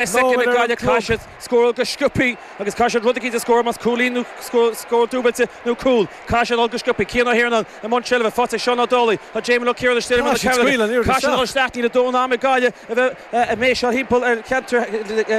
Is ag Gaillimh, caithfidh siad scóráil go sciopthaí agus caithfidh siad rud eicínt a scóráil, más cúilín nó scór dúbailte nó cúl. Caithfidh siad dhul go sciopthaí. Cian Ó hIarnáin i mbun seilbhe, faighte ag Seán Ó Dálaigh. Tá Damien Ó Ciaragáin istigh ar imeall na cearnóige. Caithfidh siad dhul isteach. Níl a ndóthain am ag Gaillimh a bheith ag méiseáil thimpeall ar cheantar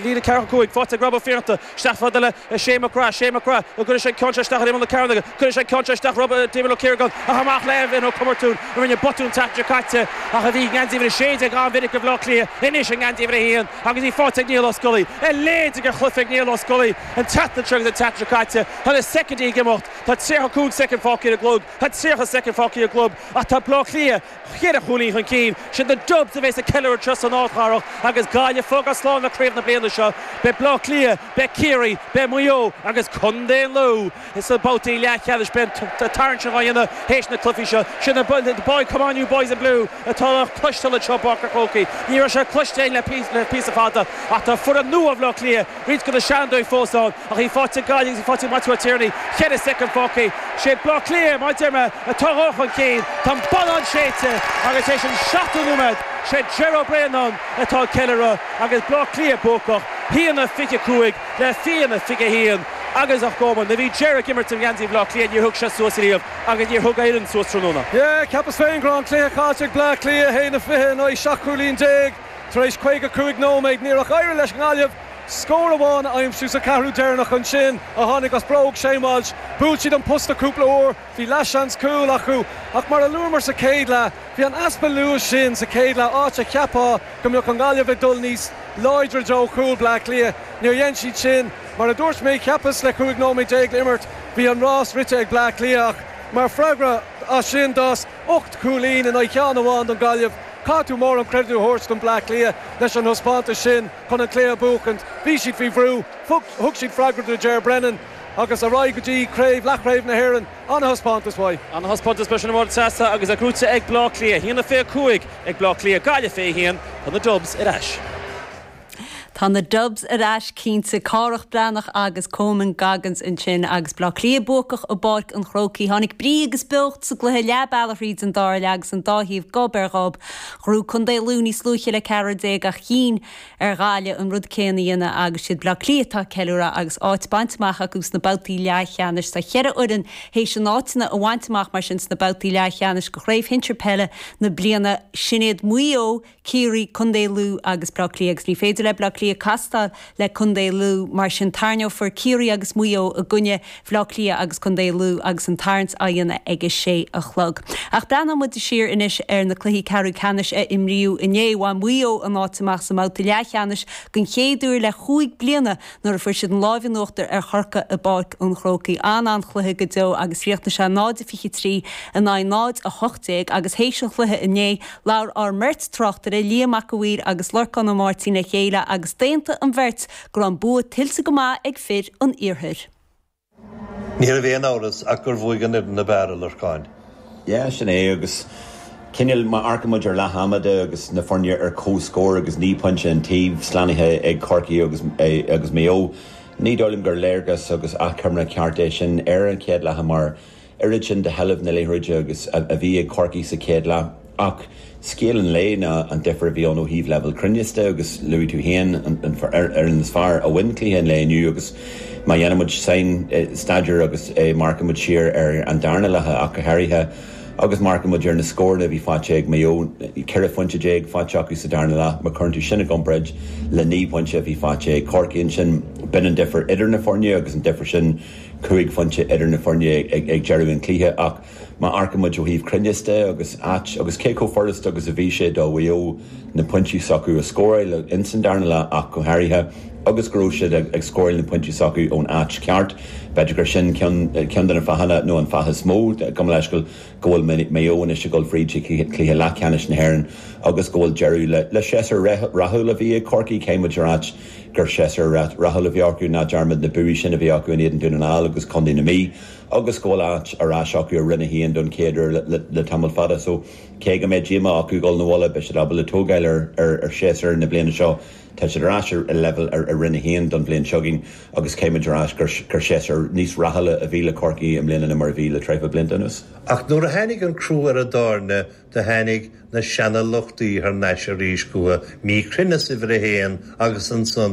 líne ceathracha cúig. Faighte ag Rob Ó Fiannachta. Isteach fada le. le Shane McGrath, Shane McGrath, nó cuirfidh sé an ceann seo isteach ar imeall na cearnóige, cuirfidh sé an ceann seo isteach roimh Damien Ó Ciaragáin, ach amach le Evan Ó Comartún, a rinne botún an tseachtain seo caite, ach a bhí i ngeansaí uimhir a sé déag an-mhinic do Bhleá Cliath, anois i ngeansaí uimhir a haon, agus í faighte ag Niall Ó Scolaí, a leithéid de chluiche ag Niall Ó Scolaí, an tseachtain seo agus an tseachtain seo caite, tá na soicindí ag imeacht, tá tríocha cúig soicind fágtha ar an gclog, tá tríocha soicind fágtha ar an gclog, ach tá Bleá Cliath cheithre chúilín chun cinn. Siad na Dubs a bheas ag ceiliúradh anseo san Ardchathair agus Gaillimh ag fágáil slán le craobh na bliana seo. Beidh Bleá Cliath, beidh Ciarraí, beidh Maigh Eo agus Condae an Lú sna babhtaí leathcheannais. Beidh an tarraingt sin dhá dhéanamh théis na cluichí seo. Siad na boys, come on you boys in blue atá le cloisteáil anseo i bPáirc a' Chrócaigh. Ní raibh sé cloiste againn le píosa fada ach tá foireann nua Bhleá Cliath, Roinnt go na seanfhondúirí fós ann ach í faighte ag Gaillimh agus í faighte ag Maitiú Ó Tiarnaigh. Cheithre soicind fágtha. Is é Baile Átha Cliath, mar a deir mé, atá dhul chun cinn. Tá an bonnán séidte agus tar éis an seachtó nóiméad is é Ger Ó Braonáin atá ag ceiliúradh agus Baile Átha Cliath buacach, 1-25 le 1-21. Agus a Choman, nuair a bhí Ger ag imirt i ngeansaí Bhaile Átha Cliath níor thug sé suas riamh agus níor thug a fhoireann suas tráthnóna. Yeah, cheapas féin go raibh an cluiche caillte ag Bleá Cliath, 1-20 in aghaidh 17 cúilín. Tar éis 55 nóiméad níor ach éirigh leis an nGaillimh scór amháin a aimsiú sa cheathrú deireanach. Ansin a tháinig as bróg Shane Walsh. Bhuail siad an posta cúpla uair, bhí leathsheans cúil acu ach mar a luamar sa chéad leath bhí an easpa luais sin sa chéad leath áit a cheapfá go mbeadh an Ghaillimh ag dul níos láidre i dtreo chúl Bhleá Cliath, níor dhein siad sin. Mar a dúirt mé cheapas le 15 nóiméad le imirt bhí an rás rite ag Bleá Cliath ach mar freagra as sin d'fhás Ocht gcúilín in aghaidh ceann amháin don Gaillimh. Caithfidh tú mórán creidiúint a thabhairt don Bleá Cliath leis an thaispeántas sin chun an cluiche a bhuachaint. Bhí siad faoi bhrú, thug siad freagra do Ger Brennan agus ar aghaidh go dtí craobh, leathchraobh na hÉireann. Ana-thaispeántas uathu. Ana-thaispeántas leis an bhfód seasta agus é gnóite ag Bleá Cliath. A haon fiche cúig ag Bleá Cliath, Gaillimh fiche a haon. Tá na Dubs ar ais. Tá na Dubs ar ais cinnte. Cárthach Breathnach agus Coman Goggins ansin agus Bleá Cliath buacach i bPáirc an Chrócaigh. Tháinig brí agus beocht sa gcluiche leath bealach thríd an dara leath agus an dá thaobh gob ar ghob. Ghnóthaigh Contae Lú níos luaithe le ceathrar déag ach chinn ar Ghaillimh an rud céann a dhéanamh agus siad Bleá Cliath atá ag ceiliúradh agus áit bainte amach acu sna babhtaí leathcheannais. Tá cheithre fhoireann théis a n-áiteanna a bhaint amach mar sin sna babhtaí leathcheannais go Chraobh Shinsear Peile na bliana sin iad Maigh Eo, Ciarraí, Co. Lú agus Bleá Cliath agus ní féidir le Bleá Cliath castáil le Co. Lú. Mar sin tairneofar Ciarraí agus Maigh Eo i gcoinne Bhleá Cliath agus Co. Lú agus an tarraingt á dhéanamh ag a sé a chlog. Ach breathnóidh muid siar anois ar na cluichí ceathrú ceannais a imríodh inné. Bhain Maigh Eo a n-áit amach sa mbabhta leathcheannais den chéad uair le chúig bliana nuair a fuair siad an lámh in uachtar ar Chorcaigh i bPáirc an Chrócaigh. An-chluiche go deo agus chríochnaigh sé 0-23 in aghaidh 0-18 agus théis an chluiche inné, labhair ár mbeirt tráchtaire, Liam Mac a' Mhaoir agus Lorcán Ó Máirtín le chéile agus d'aontaigh an bheirt go raibh an bua tuillte go maith ag fir an iarthair. Ní raibh aon amhras ach gur bhuaigh an fhoireann ab fhearr, a Lorcáin. Yeah, sin é agus cineál má amharcaimid ar leath ama de agus na foirne ar comhscór agus naoi bpointe an taobh, slánaithe ag Corcaigh agus Maigh Eo, ní dóigh liom gur léargas agus achoimre ceart é sin ar an chéad leath mar oiread sin de sheilbh na liathróide agus a bhí ag Corcaigh sa chéad leath ach scéal an lae ná an difear a bhí ann ó thaobh leibhéal cruinneas de agus luaigh tú féin an fhoireann is fearr a bhain cluiche an lae inniu agus má dhéanann muid mionstaidéar agus amharcann muid siar ar an darna leath ach go háirithe agus amharcann muid ar na scóranna a bhí faighte ag Maigh Eo, 14 phointe faighte acu sa darna leath, má chuireann tú sin i gcomparáid le 9 bpointe a bhí faighte ag Corcaigh ansin b'in an difear idir na foirne agus an difear sin cúig phointe idir na foirne ag deireadh an chluiche ach má amharcaimid ó thaobh cruinneas de agus áit agus cé chomh furasta agus a bhí sé do Mhaigh Eo na pointí s'acu a scóráil ins an darna leath ach go háirithe agus go raibh siad ag scóráil na pointí s'acu ón áit cheart b'fhéidir gur sin ceann de na fáthanna nó an fáth is mó gabh mo leithscéal go bhfuil Maigh Eo anois ag dul fríd go cluiche leathcheannais na hÉireann agus go bhfuil deireadh le séasúr rathúil a bhí ag Corcaigh caithfimid a ráit Gur séasúr rathúil a bhí acu ná dearmad na buanna sin a bhí acu in éadan Dún na nGall agus Condae na Mí agus go bhfuil áit ar ais acu i Roinn a hAon don chéad uair le tamall fada so cé go mbeidh díomá acu dhul 'na bhaile beidh siad ábalta tógáil ar séasúr na bliana seo. Tá siad ar ais i leibhéal i Roinn a hAon don bhliain seo chugainn agus caithfimid a ráit gur séasúr níos rathúla a bhí le Corcaigh i mbliana ná mar a bhí le tréan blianta anuas. Ach nuair a tháinig an crú ar an dtáirne Do tháinig na seana-lochtaí thar n-ais arís chucha, mí-chruinneas uimhir a haon agus annsan